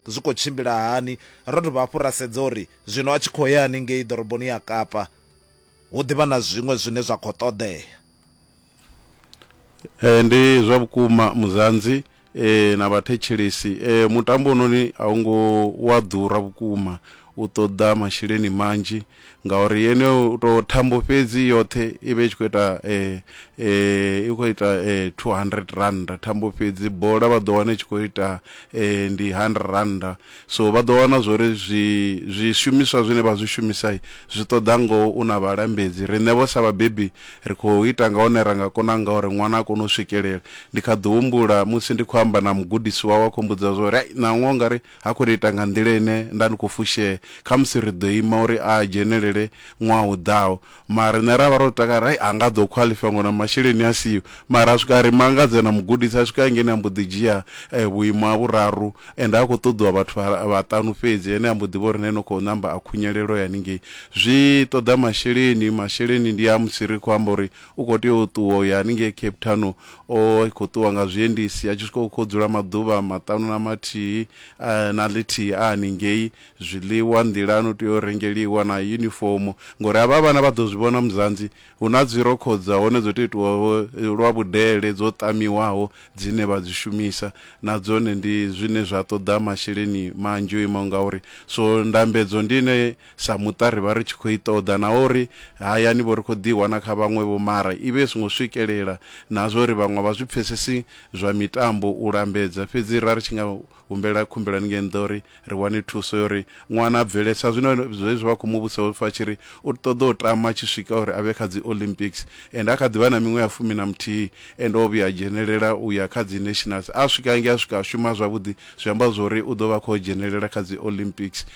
Zwi khou tshimbila hani? Ro dovha hafhu ra sedza uri zwino a tshi khou ya haningei ḓoroboni ya Kapa hu ḓivha na zwiṅwe zwine zwa khou ṱoḓea. Ee, ndi zwa vhukuma Muzanzi ee, na vhathetshelesi ee, mutambo hononi a u ngo wa ḓura vhukuma U ṱoḓa masheleni manzhi ngauri yeneyo tou thambo fhedzi i yoṱhe i vha i tshi khou ita i khou ita two hundred rannda thambo fhedzi. Bola vha ḓo wana i tshi khou ita ndi hundred rannda. So vha ḓo wana zwa uri zwi zwishumiswa zwine vha zwi shumisa zwi ṱoḓa ngoho u na vhalambedzi. Riṋe vho sa vhabebi ri khou ita nga hune ra nga kona ngaho uri ṅwana a kone u swikelela. Ndi kha ḓi humbula musi ndi khou amba na mugudisi wawe a khou mmbudza zwa uri, hai ṋaṅwaha u nga ri Ha khou ita nga nḓila ine nda ndi khou fushea, khamusi ri ḓo ima uri a dzhenelele ṅwaha u ḓaho. Mara riṋe ra vha ro takala, Hai, ha nga ḓo khwaḽifaya ngori na masheleni a siho. Mara a swika a ri mangadza na mugudisi, a swika hangei a mbo ḓi dzhia vhuimo ha vhuraru ende ha khou ṱoḓiwa vhathu vha vhaṱanu fhedzi. Ene a mbo ḓi vha uri na ene u khou ṋamba a khunyelelwa ya haningei. Zwi ṱoḓa masheleni, masheleni ndi a musi ri khou amba uri u khou tea u ṱuwa u ya haningei Cape Town O vha a tshi khou ṱuwa nga zwiendisi a tshi swika hu khou dzula maḓuvha maṱanu na mathihi na ḽithihi a haningei. Zwiḽiwa nḓilani u tea u rengeliwa na yunifomo ngauri havha vhana vha ḓo zwi vhona Muzanzi hu na dzirokho dza hone dzo tou itiwaho lwa vhudele dzo ṱamiwaho dzine vha dzi shumisa na dzone ndi zwine zwa ṱoḓa masheleni manzhi o imaho ngauri. So ndambedzo ndi ine Sa muṱa ri vha ri tshi khou i ṱoḓa naho ri hayani-vho ri khou ḓi i wana kha vhaṅwe-vho mara i vha i songo swikelela na zwa uri vhaṅwe a vha zwi pfesesi zwa mitambo u lambedza. Fhedzi ra ri tshi nga humbela khumbelo haningei nnḓa uri ri wane thuso ya uri ṅwana a bvele sa zwino zwezwi vha khou mu vhudzisa u pfa a tshi ri u ṱoḓa u tama tshi swika uri a vhe kha dzi Olympics ende a kha ḓi vha na miṅwe ya fumi na muthihi ende o vhuya a dzhenelela u ya kha dzi nationals a swika hangei a swika a shuma zwavhuḓi zwi amba zwa uri u ḓo vha a khou dzhenelela kha dzi Olympics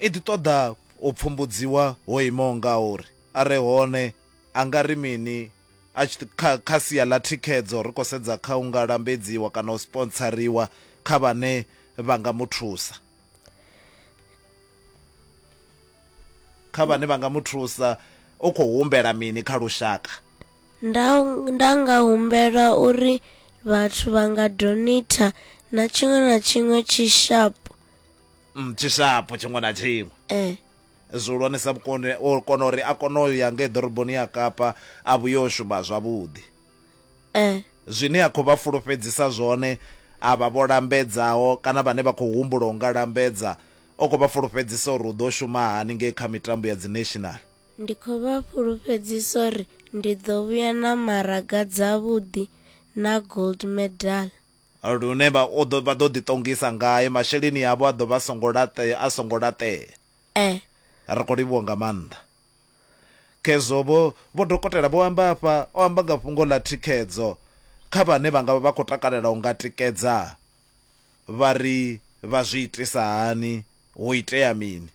I ḓi ṱoḓa u pfumbudziwa ho imaho ngauri. A re hone a nga ri mini a tshi kha kha sia ḽa thikhedzo? Ri khou sedza kha u nga lambedziwa kana u spontsariwa kha vhane vha nga mu thusa. Kha vhane vha nga mu thusa, u khou humbela mini kha lushaka? Nda, nda nga humbela uri vhathu vha nga donator na tshiṅwe na tshiṅwe tshi sharp. mm, tshishapo tshiṅwe na tshiṅwe eh zwihulwanesa vhukoni o kona uri a kone u ya ngei ḓoroboni ya kapa a vhuye o shuma zwavhuḓi eh zwine a khou vha fulufhedzisa zwone a vha vho lambedzaho kana vhane vha khou humbula u nga lambedza o khou vha fulufhedzisa uri u ḓo shuma hani ngei kha mitambo ya dzi national ndi khou vha fhulufhedzisa uri ndi ḓo vhuya na maraga dzavhuḓi na gold medal Lune vha ḓo vha ḓo ḓiṱongisa ngae, masheleni avho a ḓo vha a songo laṱea, a songo laṱea. Ee. Ri khou livhuwa nga maanḓa. Khezwo vho, vho dokotela vho amba afha, o amba nga fhungo ḽa thikhedzo kha vhane vha nga vha vha khou takalela u nga tikedza, vha ri vha zwi itisa hani, hu itea mini.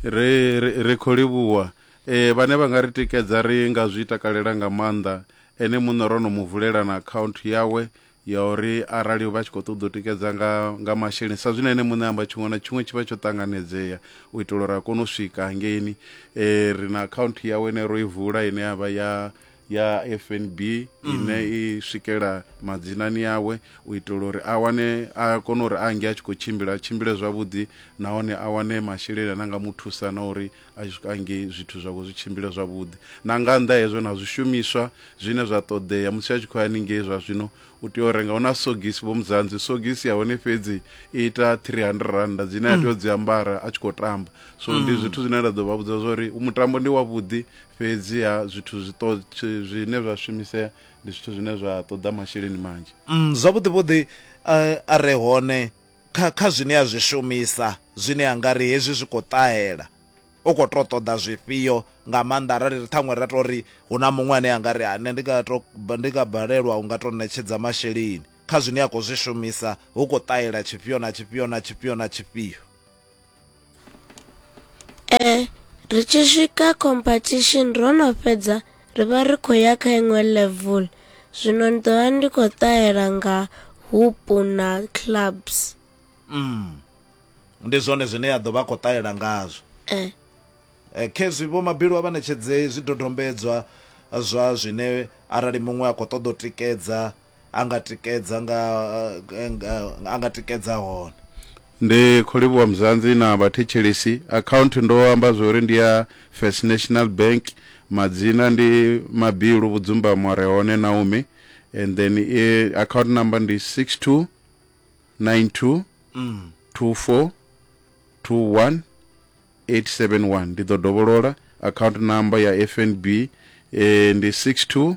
ri ri ri khou livhuwa ee vhane vha nga ri tikedza ri nga zwi takalela nga maanḓa ene muṋe ro no mu vulela na akhaunthu yawe ya uri arali vha tshi khou ṱoḓa u tikedza nga nga masheleni sa zwine ene muṋe amba tshiṅwe na tshiṅwe tshi vha tsho ṱanganedzea u itela uri a kone u swika hangeini um ri na akhaunthu yawe ine ro i vula ine ya vha ya ya fnb ine mm. i swikela madzinani awe u itela uri a wane a kone uri a nge a tshi khou tshimbila tshimbile zwavhuḓi nahone a wane masheleni ane anga mu thusa na uri a tshi swika nge zwithu zwavho zwi tshimbile zwavhuḓi na nga nnḓa hezwo na zwishumiswa zwine zwa ṱoḓea musi a tshi khou ya ningei zwa zwino u tea u renga hu na sogisi vho mudzanzi sogisi ya hone fhedzi i ita 300 randa dzine a mm. tea u dzi ambara a tshi khou tamba so ndi mm. zwithu zwine nda ḓo vha vhudza zwa uri mutambo ndi wavhuḓi fhedziha zwithu zwi to zwine zwa shumisea ndi zwithu zwine zwa ṱoḓa masheleni manzhi mm, zwavhuḓi vhuḓi uh, a re hone kha kha zwine a zwi shumisa zwine a nga ri hezwi zwi khou ṱahela u khou to ṱoḓa zwifhio nga maanḓa arali ri ṱhaṅwe ra to ri hu na muṅwe ane a nga ri ane ndi nga to ndi nga balelwa u nga to ṋetshedza masheleni kha zwine a khou zwi shumisa hu khou ṱahela tshifhio na tshifhio na tshifhio na tshifhio ee ri tshi swika competition ro no fhedza ri vha ri khou ya kha iṅwe level zwino ndi ḓo vha ndi khou ṱahela nga hupu na clubs mm. ndi zwone zwine ya ḓo vha khou ṱahela ngazwo eh. eh, khezwi vho mabilu a vha ṋetshedze zwidodombedzwa zwa zwine arali muṅwe a khou ṱoḓa u tikedza a nga tikedza nga a nga tikedza hone. Ndi khou livhuwa Mzansi na vhathetshelesi. Akhaunthu ndo amba zwo ri ndi ya First National Bank. Madzina ndi Mabilu Vhudzumbamo a re hone Naomi and then i account number ndi 6292242181. Ndi ḓo dovholola, account number ya FNB ndi 62.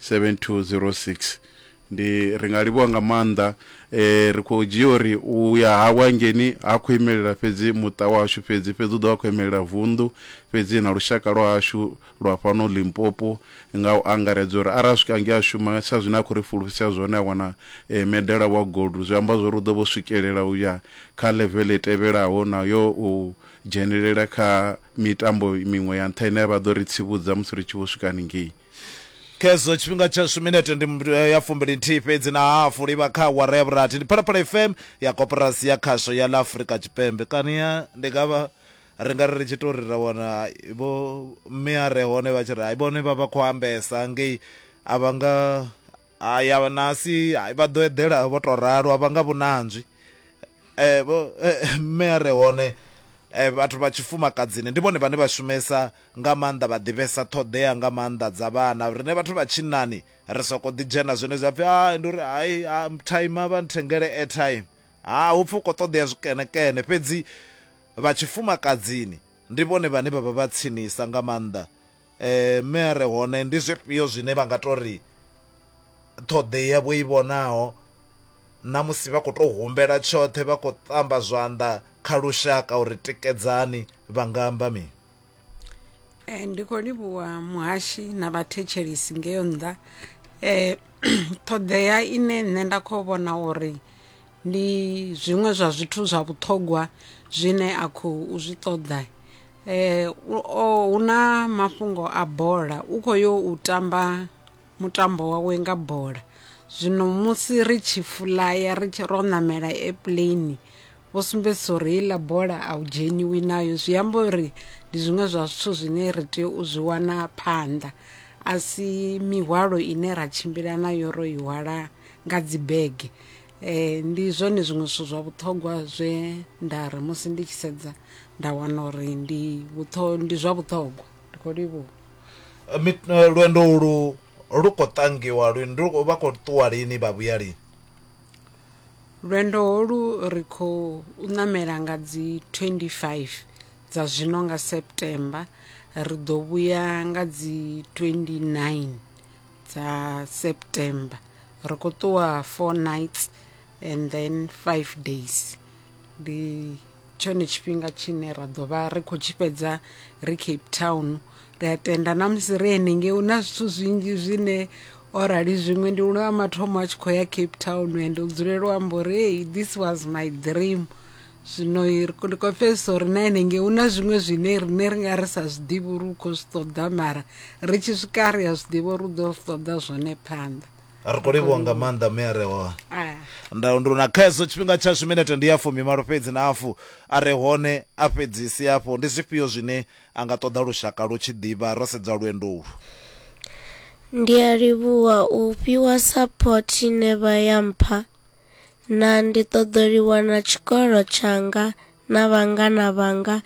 7206 ndi ri nga livhuwa nga maanḓa eh, ri khou dzhia uri u ya hawe hangeni ha khou imelela fhedzi muṱa washu fhedzi fhedzi u ḓo vha khou imelela vunḓu fhedzi na lushaka lwa hashu lwa fhano limpopo nga u angaredza uri arali swika nge a shuma sa zwine a khou ri fulufhisa zwone a wana eh, medala wa gold zwi amba zwori u ḓo vho swikelela u ya kha level i tevhelaho na yo u dzhenelela kha mitambo miṅwe ya nṱha ine vha ḓo ri tsivhudza musi ri tshi vho swika haningei khezwo tshifhinga tshashu minete ndi eh, ya fumbili nthihi fhedzi na hafu livha kha awara ya vhurathi ndi phalaphala fm ya koporasi ya khasho ya la afurika tshipembe kani ya ndi nga vha ri nga ri ri tshi to ri ra wana vho mme a re hone vha tshi ri hayi vhone vha vha khou ambesa ngei a vha nga Hai, a vha nasi. Hai, vha ḓo eḓela vho tou ralo, a vha nga vhunanzwi. Ee, vho, Mme a re hone vhathu vha tshifumakadzini ndi vhone vhane vha shumesa nga maanḓa, vha ḓivhesa ṱhoḓea nga maanḓa dza vhana. Riṋe vhathu vha tshinnani ri sokou ḓidzhena zwenezwi ha pfi, Hai, ndi uri hai, ha, time, vha nthengele airtime. Ha, hu pfi hu khou ṱoḓea zwikeṋekeṋe. Fhedzi vha tshifumakadzini ndi vhone vhane vha vha vha tsinisa nga maanḓa. Mme a re hone, ndi zwifhio zwine vha nga tou ri ṱhoḓea vho i vhonaho na musi vha khou tou humbela tshoṱhe vha khou ṱamba zwanḓa kha lushaka uri tikedzani, vha nga amba mini? Ndi khou livhuwa muhashi na vhathetshelesi ngeyo nnḓa. Ṱhoḓea ine nṋe nda khou vhona uri ndi zwiṅwe zwa zwithu zwa vhuṱhogwa zwine a khou zwi ṱoḓa, Eh, u- o- hu na mafhungo a bola u khou yo u tamba mutambo wawe nga bola zwino musi ri tshi fulaya ri tshi ro namela airplane vho sumbedzisa uri heiḽa bola a u dzheniwi nayo zwi amba uri ndi zwiṅwe zwa zwithu zwine ri tea u zwi wana phanḓa a si mihwalo ine ra tshimbila nayo ro i hwala nga dzibege Ee, ndi zwone zwiṅwe zwithu zwa vhuṱhogwa zwe nda ri musi ndi tshi sedza nda wana uri ndi vhuṱho ndi zwa vhuṱhogwa ndi khou livhuwa Mit- eh, lwendo ulu lu khou tangiwa lini Lu khou- vha khou ṱuwa lini vha vhuya lini lwendo holu ri khou ṋamela nga dzi 25 dza zwino nga september ri ḓo vhuya nga dzi 29 dza september ri khou ṱuwa four nights and then five days ndi tshone tshifhinga tshine ra ḓo vha ri khou tshi fhedza ri cape town ri a tenda na musi ri henengei hu na zwithu zwinzhi zwine o rali zwiṅwe ndi lwa mathomo a tshi khou ya cape town and u dzulela u amba uri hey this was my dream zwino ndi khou pfesesa uri na henengei hu na zwiṅwe zwine riṋe ri nga ri sa zwi ḓivhi uri u khou zwi ṱoḓa mara ri tshi swika ri a zwi ḓivha uri u ḓo zwi ṱoḓa zwone phanḓa ri khou livhuwa nga maanḓa mme a re hone ndaundu na khaeso tshifhinga tshashu minete ndi ya fumi malo fhedzi na afu a re hone a fhedzisi afho ndi zwifhio zwine a nga ṱoḓa lushaka lu tshi ḓivha ro sedza lwendo ulu ndi a livhuwa u fhiwa support ine vha ya mpha na ndi ṱoḓoliwa na tshikolo tshanga na vhangana vhanga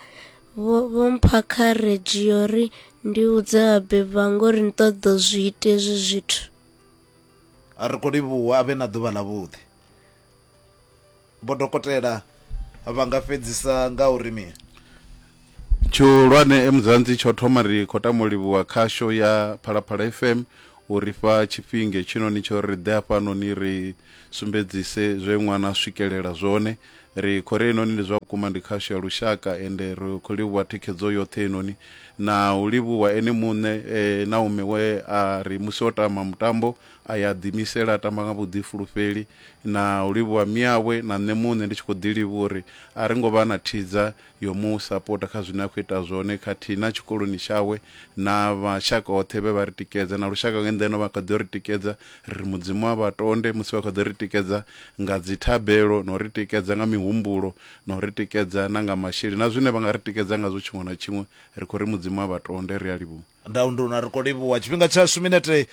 vho vho mpha kha redzhio ri ndi vhudze vhabebi vha ngori ni ṱoḓa u zwi ita hezwi zwithu ri khou livhuwa a vhe na ḓuvha ḽavhuḓi vho dokotela vha nga fhedzisa nga uri mini Tshihulwane e Mudzanzi tsho thoma ri kho tamo livhuwa khasho ya Phalaphala FM uri fha tshifhinge tshino ni tsho ri ḓea fhano ni ri sumbedzise zwe ṅwana swikelela zwone ri khori enoni ndi zwa vhukuma ndi khasho ya lushaka ende ri kho livhuwa thikhedzo yoṱhe enoni na u livhuwa ene muṋe e, na ume we a ri musi o tama mutambo a ya ḓimisela a tamba nga vhuḓifulufheli na u livhuwa miawe na nṋe muṋe ndi tshi kho ḓi livhuwa uri a ri ngo vha na thidza yo mu sapota kha zwine a khou ita zwone khathihi na tshikoloni tshawe na vhashaka hoṱhe vhe vha ri tikedza na lushaka nga nḓeno vha kha ḓi ri tikedza ri ri mudzimu a vha tonde musi vha kha ḓi ri tikedza nga dzithabelo na u ri tikedza nga mihumbulo na u ri tikedza na nga masheleni na zwine vha nga ri tikedza ngazwo tshiṅwe na tshiṅwe ri khou ri mudzimu a vha tonde ri a livhuwa Ndau ndi hune ri khou livhuwa tshifhinga tshashu, minete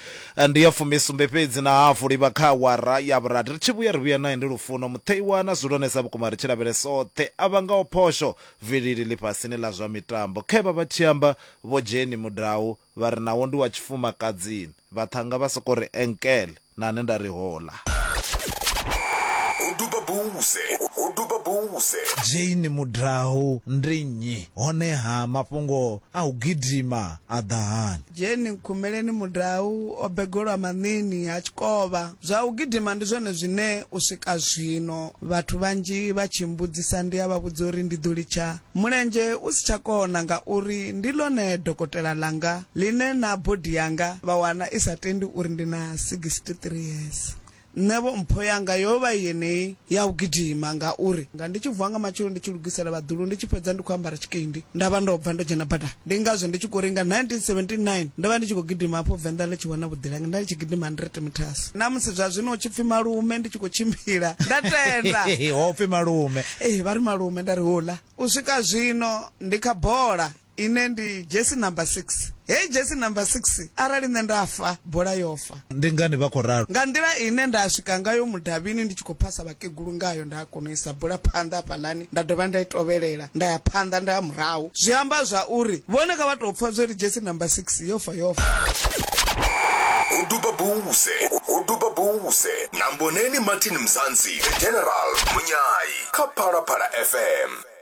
ndi ya fumi sumbe fhedzi na hafu u livha kha awara ya vhurathi. Ri tshi vhuya, ri vhuya nae ndi lufuno, mutheiwa na zwihulwanesa ha vhukuma ri tshi lavhelesa oṱhe a vhangaho phosho vilili ḽifhasini ḽa zwa mitambo. Khe vha vha tshi amba Vho Jenny Mudau vha ri nawo ndi wa tshifumakadzini, vhaṱhannga vha sokou ri enkele. na ne nda ri ho ḽa. Ho duba buse, ho duba buse. Jane Mudrahu ndi nnyi, honeha mafhungo a u gidima a ḓa hani? Jane Nkhumeleni Mudrahu o begolwa Maṋiini ha Tshikovha. Zwa u gidima ndi zwone zwine u swika zwino vhathu vhanzhi vha tshi mmbudzisa ndi a vha vhudza uri ndi ḓo litsha. Mulenzhe u si tsha kona ngauri ndi ḽone dokotela ḽanga ḽine na body yanga vha wana i sa tendi uri ndi na 63 years. Nṋevho mpho yanga yo vha i yeneyi ya u gidima ngauri nga ndi tshi vuwa nga matsheloni ndi tshi lugisela vhaḓulu ndi tshi fhedza ndi khou ambara tshikendi nda vha ndo bva ndo dzhena badani. ndi ngazwo ndi tshi khou ri nga 1979 ndo vha ndi tshi khou gidima hafho venḓa ḽi tshi wana vhuḓilangi nda ndi tshi gidima 100 meters na musi zwa zwino u tshi pfi malume ndi tshi khou tshimbila nda tenda ho pfi malume ee vha ri malume nda ri hula u swika zwino ndi kha bola ine ndi jesi number 6 heyi jesi number 6 arali nṋe nda fa bola yo fa Ndi ngani vha khou ralo? Nga nḓila ine nda swika ngayo mudavhini ndi tshi khou phasa vhakegulu ngayo, nda kona u isa bula phanḓa hafhaḽani, nda dovha nda i tovhelela, nda ya phanḓa, nda ya murahu. Zwi amba zwa uri vhone kha vha tou pfa zwo ri dzhesi number six yo fa, yo fa. Ho duba buse, ho duba buse na Mboneni Martin Mzansi, The General, Munyayi kha Phalaphala FM.